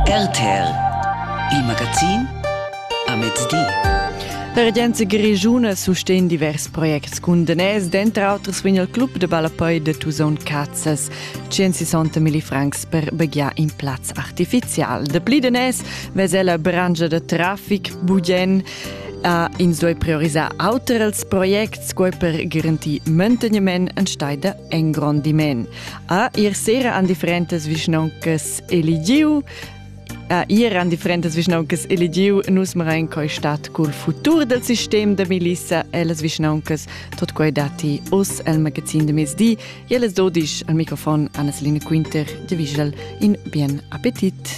RTL Il magazin a mezdi. La regenza grischuna sustegn divers projects cun daners, denter auters vegn il club de ballapei de Tusaun Cazzas 160 mili francs per begliar in plaz artificial. De pli daners vesa la brangia de traffic Bugien Uh, ins doi priorisar auters projects sco per garantir manteniment en steida engrondiment. A ir sera an differentas vischnauncas eligiu a ir an differentas vischnauncas eligiu nus marain coi stat cul futur del sistem da milissa e las vischnauncas tot quei dati us el magazin de mezdi e les dodisch al microfon Anneslina Quinter de Vischel in bien appetit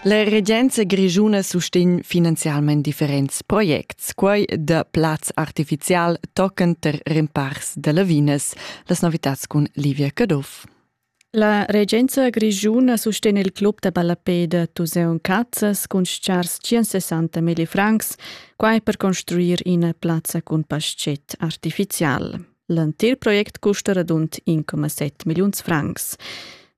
La regenza grigiuna sustegn finanzialmente differenze projects. Quai da plaz artificial tochen ter rempars da lavinas. Las novitads cun Livia Caduff. La regenza grischuna sustegna il club da ballapeda Tuseun Cazzas cun schars 160 mili francs, quai per construir ina plazza cun paschet artificial. L'entir project custa radund 1,7 milliuns francs.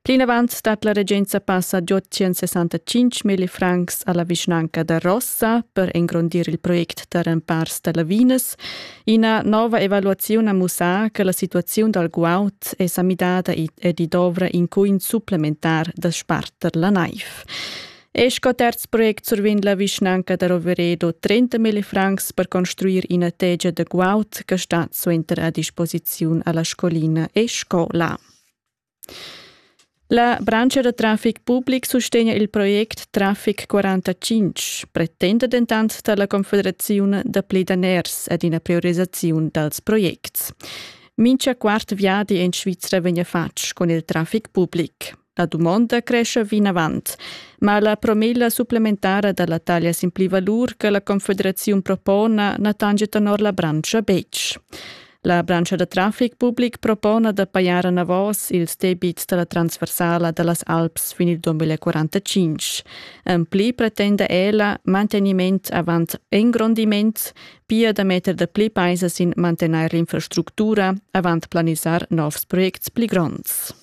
Plinavant stat la regenza passa ad 865 mil francs alla vischnanca da Rossa per engrondir il project da rempars da lavinas. Ina nova evaluaziun ha mussà che la situaziun dal guaud è sa midada ed i dovra in cun supplementar da sparter la naiv. E sco terz project survegn la vischnanca da Roveredo 30.000 francs per construir ina tegia da guaud che stat suenter a disposiziun alla scolina e scola. La branscha da traffic public sustegna il project Traffic 45, pretenda dentant dalla Confederaziun da daners ed ina priorisisaziun dals projects. Mincha quart viadi en Svizra vegna fatg con il traffic public. La dumonda crescia vinavant, ma la promilla supplementara da la taglia sin plivalur che la Confederaziun propona na tange tenor la branscha betg. La branscha da traffic public propona da pajar anavos ils debits dalla transversala dallas Alps fin il 2045. En pli pretenda ella manteniment avant engrondiment, pia da metter da pli paisa sin mantener l'infrastructura avant planisar novs projects pli gronds.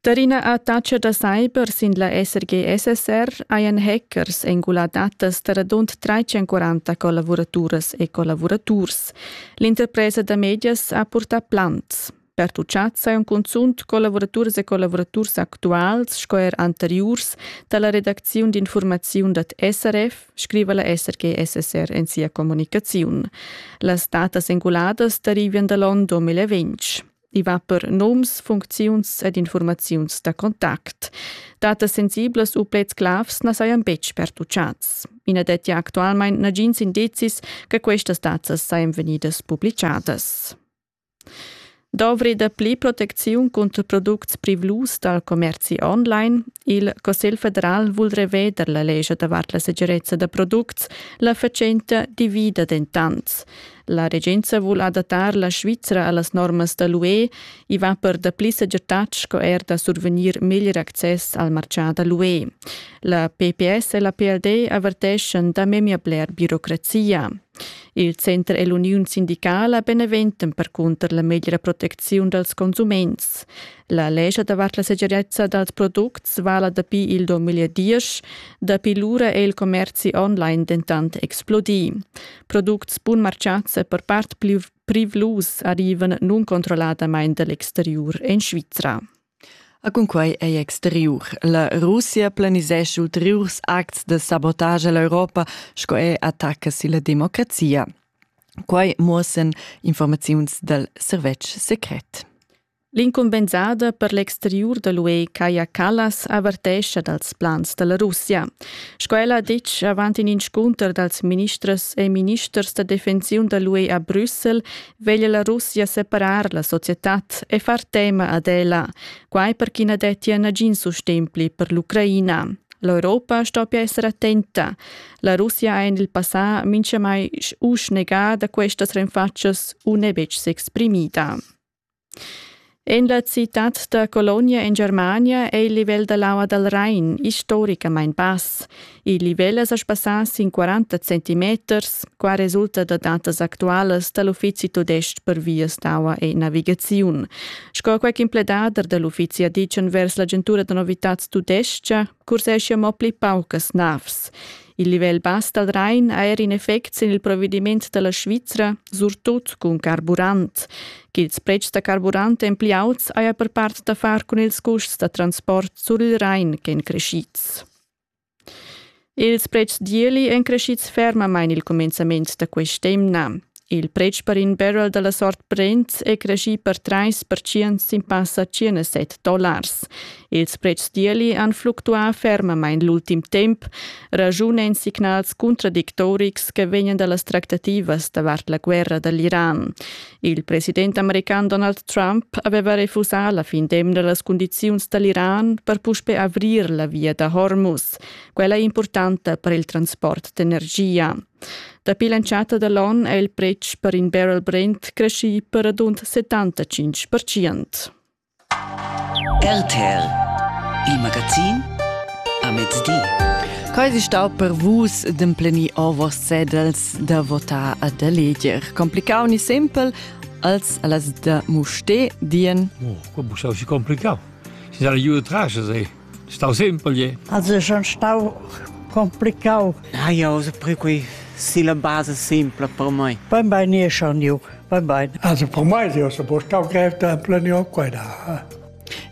Der ina attacca da cyber sin la SRG-SSR hajan hackers engulà datas da radund 340 collavuraturas e collavuraturs. L'interpresa da medias ha purtà plans. Pertuchads hajan cunzunt collavuraturas e collavuraturs actuals sco er anteriurs da la redacziun d'infurmaziun dad SRF, scriva la SRG-SSR en sia communicaziun. Las datas enguladas derivan da l'onn 2020. I va per noms, funcziuns ed informaziuns da contact. Datas sensiblas u pleds clavs na sajan betg pertuchads. I na dettia actualmain nagins indizis che questas datas sajan vegnidas publichadas. Dovri dapli protecziun cunter products privlus dal commerzi online? Il Cussegl federal vul reveder la lescha davart la segirezza da products. La fatschenta divida dentant. La regenza vul adattar la Svizra a las normas da l'UE. I va per dapli segirtad sco er da survegnir meglier access al martgà da l'UE. La PPS e la PLD averteschan da memia bler birocrazia. Il center e l'uniun sindicala beneventan percunter la meglra protecziun dals consuments. La lescha davart la segirezza dals products vala dapi il 2010. Dapi lura è il commerzi online dentant explodì. Products bunmartgads e per part privlus arrivan nuncontrolladamain da l'exteriur en Svizra. A cunquai ei exteriur. La Russia planisesch ulteriurs acts de sabotage all'Europa sco è attacca silla democrazia. Quai muossen informaziuns dal servetsch secret. L'incumbensada per l'exteriur da l'UE Kaja Kallas avertescha dals plans da la Russia. Sco ella ha ditg avant in inscunter dals ministers e ministers da defensiun da l'UE a Brüssel, veglia la Russia separar la societad e far tema ad ella, quai per ch'i na dettia nagin sustegn pli per l'Ucraina. L'Europa stoppia essere attenta. La Russia ha en il passà minchamai usch negà da questas renfatschas u n'è betg s'exprimida. En la citad da Colonia en Germania è il livel da l'aua dal Rain istoricamain bass. Il livel è sa sbassà sin 40 centimeters, qua resulta da datas actualas da l'Uffizi tudestg per vias d'aua e navigaziun. Sco quel impledader da l'uffizi ha ditg envers l'agentura da novitads tudestga, curseschia mo pli paucas navs. Il livel bass dal Rain ha er in effect sin il provediment da la Svizra, surtut cun carburant. Ch'ils pretschs da carburant èn pli auts haja per part da far cun ils custs da transport sur il Rain ch'èn creschids. Ils pretschs d'ieli èn creschids fermamain il cumenzament da quest'emna. Il pretsch per in barrel dalla sort Brent è creschì per 30% sin passa 107 dollars. Ils pretschs d'ieli han fluctuà fermamain l'ultim temp, ragiunend signals contradictorics che vegnan da las tractativas davart la guerra dall'Iran. Il president american Donald Trump aveva refusà la fin d'emna las cundiziuns dall'Iran per puspe avrir la via da Hormuz, quella importanta per il transport d'energia. Dapi l'entschatta da l'on è il pretsch per in barrel Brent creschì per radund 75 percent. RTL, il magazin a mezdi. Quai è stà per vus d'emplenir ovos cedels da votar a da leger. Complicau ni simpel, als a las da Muste dien. Oh, qua busau si complicau. Si sa le giù trasce, sei. Stau simpel je. Also schon stau complicau. Ja, ja, also per qui si la base simpla per mai. Beim Bein e schon ju, beim Bein. Also per mai io se po stau grev temple io qua da.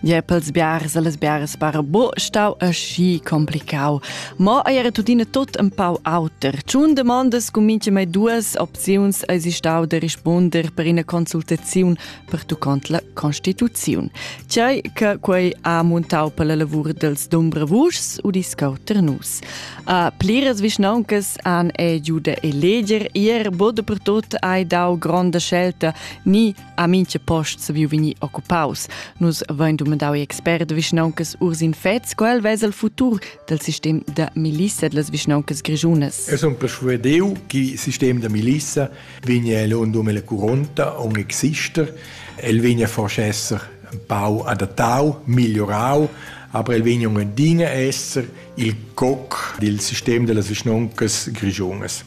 Je pels biares e les biares para bo stau aschi complicau. Ma era tutine tot un pau auter. Ciun demandas cumince mai duas opziuns eisi stau de rispunder per ina consultaziun pertuccont la constituziun. Tgei che quei ha montau per la lavur dels Dumbrevuschs u discau Ternus. A pliras vischnauncas han ei giu da eleger ier bod per tot hai dau gronda scelta ni a minche post se viu vegni occupaus. Nus vein dumandau i expert vischnauncas Ursin Fetz quel vesa il futur del sistem de milissa de las vischnauncas grigiunas. Es un persuadeu che il sistem de milissa vegn el undum ella curonta aunc exister. El vegn a forsa esser empau adattau, migliorau, aber el vegn aunc adina esser il coc dil sistem dellas vischnoncas grischunas.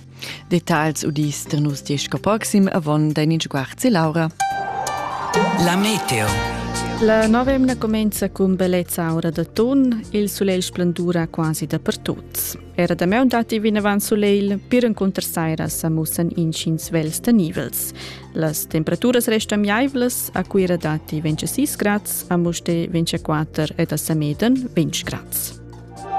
Details udis da nus diesch proxim avon dein in sguarzi Laura. La meteo. La nova emna comincia cun bellezza aura da ton, il sulegl splendura quasi dapertut. Era damaun datti vinavant sulegl, pir encunter saira sa mussan intgins vels tenivels. Las temperaturas restan miaivlas, a Cuira datti 26 grads, a Mustér 24 ed a Sameden 20 grads.